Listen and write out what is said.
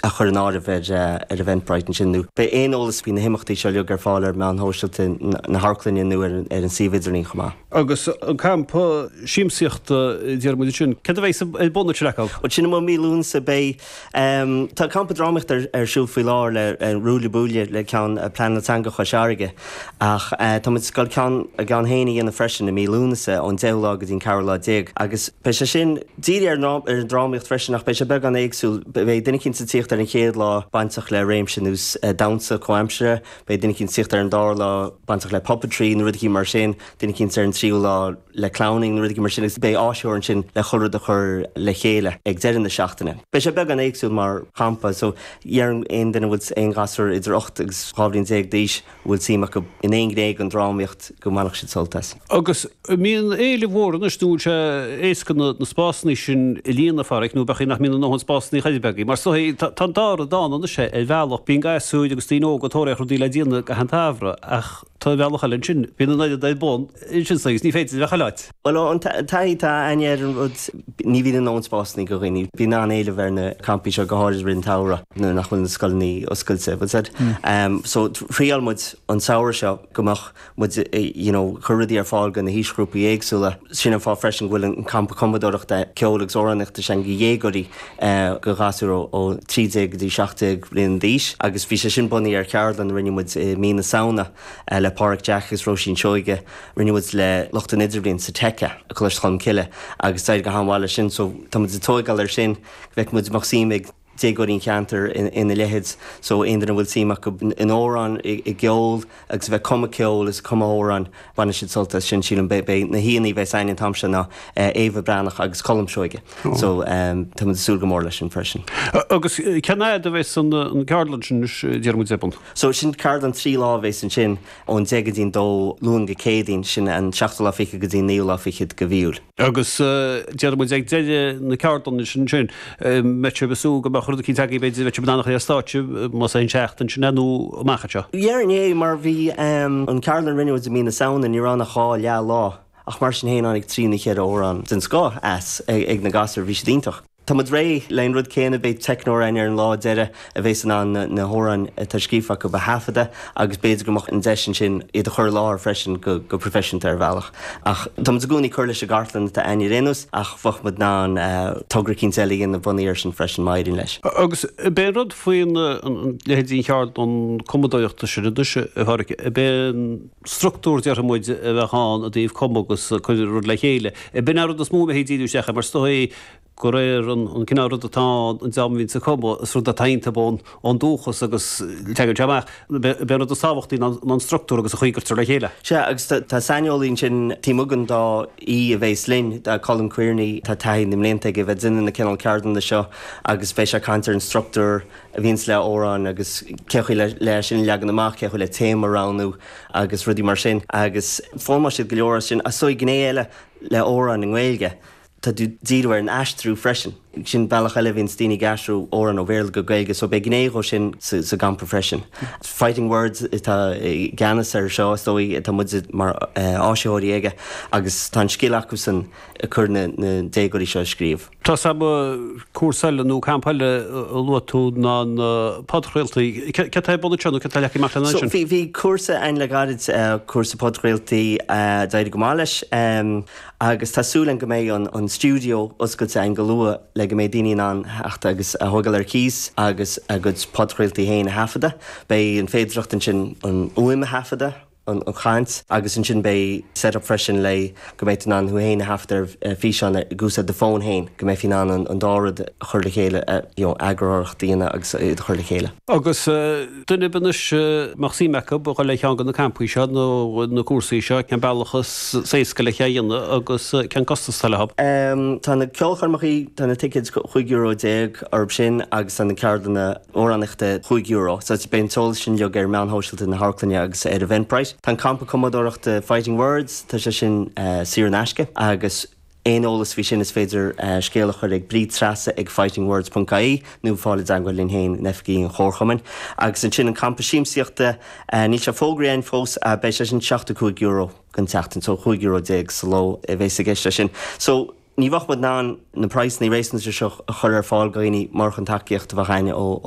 a chur in áireamh ar Eventbrite ansin, nó tá aon eolas faoi na himeachtaí seo uilig ar fáil ar mheáin shóisialta na hAmharclainne nó ar an suíomh idirlín chomh maith. Agus an campa siamsaíochta, déarfaidh muid, ansin, céard a bheidh ar bun na taca? Bhuel, sin i Mí Lúnasa, beidh. Tá an campa drámaíochta ar siúl faoi láthair le Ruaille Buaille le ceann Pleanáil Teanga Chois Fharraige, ach tá muid ag dul ceann again féin a dhéanamh freisin i Mí Lúnasa, ón 10ú lá go dtí an ceathrú lá déag, agus beidh sé sin. Dírithe ar an drámaíocht freisin, ach beidh sé beagán éagsúil. Beidh duine eicínt ag tíocht ar an gcéad lá bainteach le réimse an damhsa comhaimseartha, beidh duine eicínt ag tíocht ar an dara lá bainteach le puppetry nó rud eicínt mar sin, duine eicínt ar an tríú lá le clowning nó rud eicínt mar sin agus beidh áisitheoir ansin le chuile rud a chur le chéile ag deireadh na seachtaine. Beidh sé beagán éagsúil mar champa, so déarfainn aon duine a bhfuil aon ghasúir idir ocht agus dhá bhliain déag d'aois, bhfuil suim acu in aon ghné den drámaíocht go mbainfeadh siad sult as. Agus an mbíonn éileamh mór anois, nó an bhfuil sé éasca na spásanna sin a líonadh, a Pháraic, nó b'fhéidir nach mbíonn a ndóthain spásanna b'fhéidir agaibh? Mar sothaí, tá an dá rud ann anois ar bhealach, bíonn gasúir agus daoine óga ag tóraíocht rudaí le déanamh i gcaitheamh an tsamhraidh, ach tá an bhealach eile ansin, bíonn an oiread ar bun ansin sa, agus ní féidir a bheith chuile áit. Bhuel, ón taithí atá againne ar an rud, ní bhíonn a ndóthain spásanna do dhaoine. Bíonn an-éileamh ar na campaí seo, go háirid i rith an tsamhraidh nuair nach bhfuil na scoileanna oscailte. That said, so thriáil muid an samhradh seo go mbeadh muid you know ag cur rudaí ar fáil do na haoisghrúpaí éagsúla. Sin an fáth freisin go bhfuil an campa cumadóireachta ceoil agus amhránaíochta sin do dhéagóirí do ghasúir ó 13 go dtí 17 bliain d'aois agus bhí sé sin bunaithe ar cheardlann a rinne muid i mí na Samhna le Páraic Jeaic agus Róisín Seoighe Rinne muid le lucht an Idirbhliain sa Tech i gColáiste Cholmcille agus d'éirigh go han-mhaith leis sin so tá muid ag tóigeáil ar sin go bhfeicfidh muid an mbeadh suim ag déagóirí an cheantair ina leithéid so aon duine a bhfuil suim acu in amhráin, i gceol agus a bheith ag cumadh ceoil is ag cumadh amhrán bainfidh siad sult as sin sílim. Beidh na haíonna a bheas againn an t-am seo ná Éabha Breathnach agus Colm Seoighe so tá muid ag súil go mór leis sin freisin. Agus cén fhaid a bheas an ceardlann sin anois déarfaidh muid ar bun? So sin ceardlann trí lá a bheas ansin. ón deich go dtí'n dó, Luan go Céadaoin, sin an seachtú lá fichead go dtí'n naoú lá fichead de mhí Iúil. Agus déarfaidh muid ag deireadh na ceardlainne sin ansin, mbeidh sibh ag súil go mbeadh rud eicínt agaibh, b'fhéidir, bheadh sibh in ann a chur ar stáitse, más é an seachtain sin é nó amach anseo. Go deimhin, mar bhí an ceardlann a rinne muid i mí na Samhna, ní raibh ann ach dhá leath lá, ach mar sin féin tháinig trí nó cheithre amhrán den scoth as ag na gasúir, bhí siad iontach. Tá muid ag iarraidh leis an rud céanna, beidh teicneoir againn ar an lá deireadh a bheas in ann na hamhráin atá scríofa acu a thaifeadadh agus b'fhéidir go mbeadh an deis ansin iad a chur i láthair freisin go proifisiúnta ar bhealach. Ach tá muid i gcónaí ag cur leis an gcartlann atá againn ar aon nós ach bheadh muid in ann togra eicínt eile a dhéanamh bunaithe ar sin freisin má éiríonn leis. Agus beidh an rud faoin, an, leithéidí an cheardlainn cumadóireachta sin anois, a Pháraic, beidh an structúr déarfaidh muid a bheadh ann i dtaobh cumadh agus cur rud le chéile, b'in an rud is mó a bheifí ag díriú isteach air mar is dóigh, go réir an cineál rud atá ann, an dream a bhíonns ag cumadh, is rud atá iontub ón dúchas agus teagann sé amach. B'é an rud is tábhachtaí ná an structúr agus an chaoi a gcuirtear le chéile. Sea, agus tá saineolaí ansin taobh againn dó, aoi a bheas linn, Colin Quearney, tá taithí na mblianta aige a bheith ag déanamh na cineál ceardlainne seo agus beidh sé ag caint ar an structúr a bhíonns le amhráin agus cé chaoi le é sin a leagan amach, cé chaoi le téama a roghnú agus rudaí mar sin agus foghlaimeoidh siad go leor as sin. Is dóigh, gné eile le amhráin i nGaeilge, Tá tú ag díriú ar an aistriú freisin. Sin bealach eile a bhíonns daoine ag aistriú amhrán ó Bhéarla go Gaeilge so beidh gné dhó sin sa gcampa freisin. Fighting Words atá i gceannas air seo is dóigh, tá muide mar áisitheoirí aige agus tá an scil acusan ag cur na déagóirí seo ag scríobh. Tá a fhios agam, cúrsa eile nó campa eile a luaigh tú ná na podchraoltaí. Céard atá ar bun anseo nó céard atá leagtha amach lena So, bhí cúrsa ann le gairid, cúrsa podchraoltaí, d'éirigh go maith leis. agus tá súil agam go mbeidh an stiúideo oscailte againn go luath le go mbeidh daoine in ann a theacht agus é a thógáil ar cíos agus a gcuid podchraoltaí féin a thaifeadadh. Beidh an féidearthacht ansin an fhuaim a thaifeadadh, an chaint, agus ansin beidh setup freisin le go mbeidh tú in ann thú féin a thaifeadadh ar físeán ag úsáid do fón féin, go mbeifí in ann an dá rud a chur le chéile, you know, eagarthóireacht a dhéanamh agus iad a chur le chéile. Agus. duine ar bith anois a mbeadh suim acu a dhul ar cheann de na campaí seo nó na cúrsaí seo, cén bealach is éasca le é a dhéanamh agus cén costas atá leo? Tá na ceolchoirmeacha, tá na ticéid chúig euro déag, orthub sin agus tá na ceardlanna amhránaíochta chúig euro. Beidh an t-eolas sin uilig ar mheáin shóisialta na hamharclainne agus ar Eventbrite. Tá an campa cumadóireachta Fighting Words, tá sé sin saor in aisce agus. Aon eolas faoi sin is féidir scéal a chur ag Bríd Treasa ag fightingwords ponc ie nó fáil i dteangmháil linn féin in oifigí an Chomharchumainn. Agus ansin an campa siamsaíochta, níl sé fógraithe againn fós, beidh sé sin €75 don tseachtain, so €15 sa ló a bheas i gceist leis sin. So, ní bheadh muid in ann na praghsanna réasúnta seo a chur ar fáil do dhaoine murach an tacaíocht a bheadh againn ó